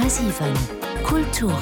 10,7 Kulturen.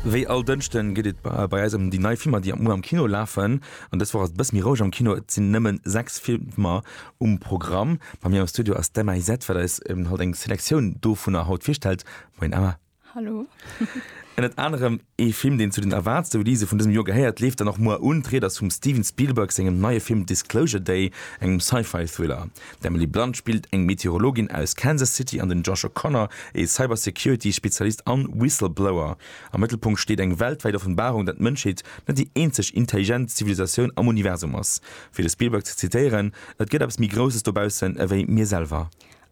Wéi all Dënschden geet et bei eis ëm déi nei Filmer, déi am Muer am Kino lafen. An dës Woch ass et e bësse méi roueg am Kino, et sinn nëmmen sechs Filmer um Programm. Bei mir am Studio ass d'Emma Isett, wat eis haut eng Selektioun dovunner haut virstellt. Moien Emma. Hallo. Ënnert anerem ee Film, deen zu den erwaartste Release vun dësem Joer gehéiert, leeft dann och muer un. D'Ried ass vum Steven Spielberg sengem neie Film Disclosure Day, engem Sci-Fi-Thriller. D'Emily Blunt spillt eng Meteorologin aus Kansas City an den Josh O'Connor ee Cybersecurity-Spezialist an Whistleblower. Am Mëttelpunkt steet eng weltwäit Offenbarung, dat d'Mënschheet net déi eenzeg intelligent Zivilisatioun am Universum ass. Fir de Spielberg ze zitéieren, Et gëtt eppes méi Grousses dobaussen ewéi mir selwer.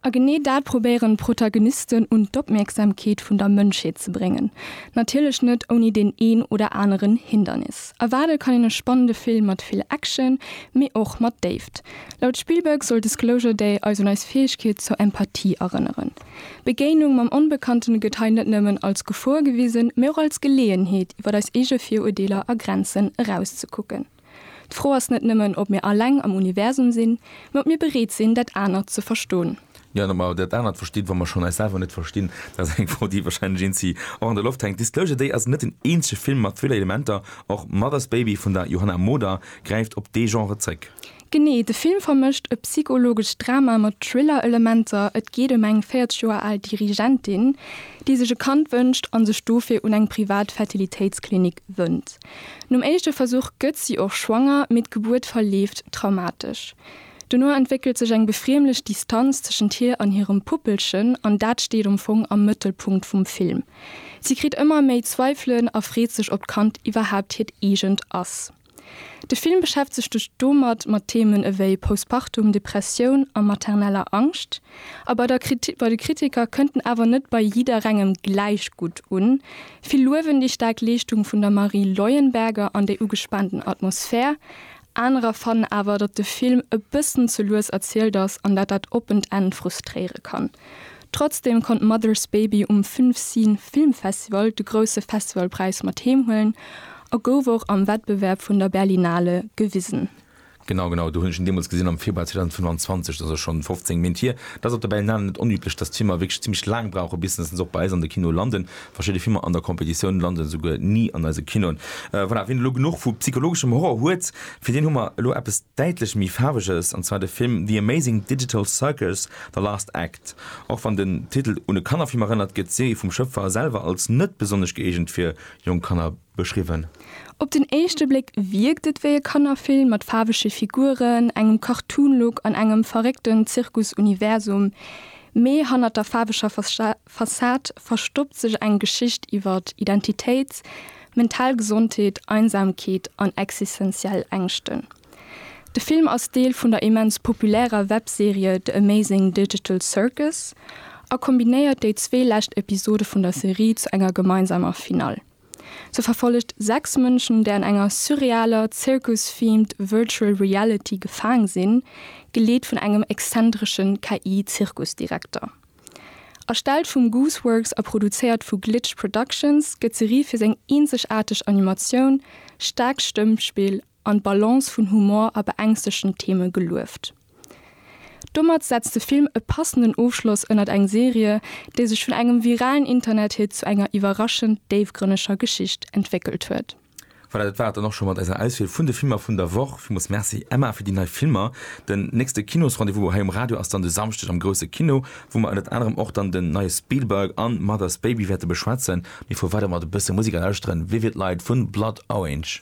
A genee dat probéieren d'Protagonisten un d'Opmierksamkeet vun der Mënschheet ze bréngen. Natierlech net ouni deen een oder aneren Hindernis. Erwaarde kann een e spannende Film mat vill Action, mee och mat Déift. Laut Spielberg soll Disclosure Day eis un eis Fäegkeet zur Empathie erënneren. D'Begéinung mam Onbekannte gëtt hei net nëmmen als Gefor gewisen, mee och als Geleeënheet iwwer eis eege Virurdeeler a Grenzen erauszekucken. D'Fro ass net nëmmen, ob mir alleng am Universum sinn, mä ob mir bereet sinn, dat anert ze verston. Jo, an ob mer dat anert verstinn, wa mer schonn eis selwer net verstinn, dat ass eng Fro, déi wahrscheinlech een si och an der Loft hänkt. Disclosure Day ass net den eenzege Film mat Thriller-Elementer. Och Mother's Baby vun der Johanna Moder gräift op dee Genre zréck. Genee, de Film vermëscht e psychologescht Drama mat Thriller-Elementer. Et geet ëm eng 40 Joer al Dirigentin, déi sech e Kand wënscht a sech dofir un eng privat Fertilitéitsklinik wënnt. Nom éischte Versuch gëtt si och schwanger, mee d'Gebuert verleeft traumatesch. Dono entwéckelt sech eng befriemlech Distanz tëschent hir an hirem Puppelchen an dat steet am Fong am Mëttelpunkt vum Film. Si kritt ëmmer méi Zweifelen a freet sech, ob d'Kand iwwerhaapt hiert eegent ass. De Film beschäftegt sech domat mat Themen ewéi Postpartum, Depressioun a materneller Angscht. A bei de Kritiker kënnt en awer net bei jidderengem gläich gutt un. Vill luewen déi staark Leeschtung vun der Marie Leuenberger an déi ugespaanten Atmosphär. Anerer fannen awer, datt de Film e bëssen ze lues erzielt ass an dat dat oppent Enn frustréiere kann. Trotzdem konnt Mother's Baby um Filmscene Film Festival de grousse Festivalpräis mat heem huelen a gouf och am Wettbewerb vun der Berlinale gewisen. Genau, genau, do hunn ech en deemools gesinn am Februar 2025, dat ass schonn 15 Méint hier. Dat ass op der Berlinale net onüblech, dass d'Filmer wierklech zimlech laang brauchen, bis dass se och bei eis an de Kinoe landen. Verschidde Filmer an der Competitioun landen esouguer ni an eise Kinoen. Voilà, wien elo genuch vu psychologeschem Horror huet, fir deen hu mer elo eppes däitlech méi Faarweges, an zwar de Film The Amazing Digital Circus, The Last Act. Och wann den Titel un e Kannerfilm erënnert, gëtt d'Serie vum Schëpfer selwer als net besonnesch gëeegent fir jonk Kanner beschriwwen. Op den éischte Bléck wierkt et wéi e Kannerfilm mat faarwege Figuren, engem Cartoon-Look an engem verréckten Zirkus-Universum. Mee hannert der faarweger Fassad verstoppt sech eng Geschicht iwwer Identitéit, mental Gesondheet, Einsamkeet an existenziell Ängschten. De Film ass Deel vun der immens populärer Webserie The Amazing Digital Circus a kombinéiert déi zwee lescht Episode vun der Serie zu enger gemeinsamer Finall. Se verfollegt sechs Mënschen, déi an enger surrealer, Zirkus-themed Virtual Reality gefaang sinn, geleet vun engem exzentresche KI-Zirkusdirekter. Erstellt vum Gooseworks a produzéiert vu Glitch Productions, gëtt d'Serie fir seng eenzegaarteg Animatioun, staarkt Stëmmspill an d'Balance vun Humor a beängstegten Theme gelueft. Domat setzt de Film e passenden Ofschloss ënnert eng Serie, déi sech vun engem viralen Internethit zu enger iwwerraschend déifgrënneger Geschicht entwéckelt huet. Voilà, dat war et dann och scho mat eiser Auswiel vun de Filmer vun der Woch. Villmools Merci Emma fir déi nei Filmer. Den nächste Kinos-Rendez-vous hei um Radio ass dann de Samschdeg am Grousse Kino, wou mer ënnert anerem och dann den neie Spielberg an Mother's Baby wäerte beschwätzen. Mir fuere weider mat e bësse Musek a lauschteren Vivid Light vun Blood Orange.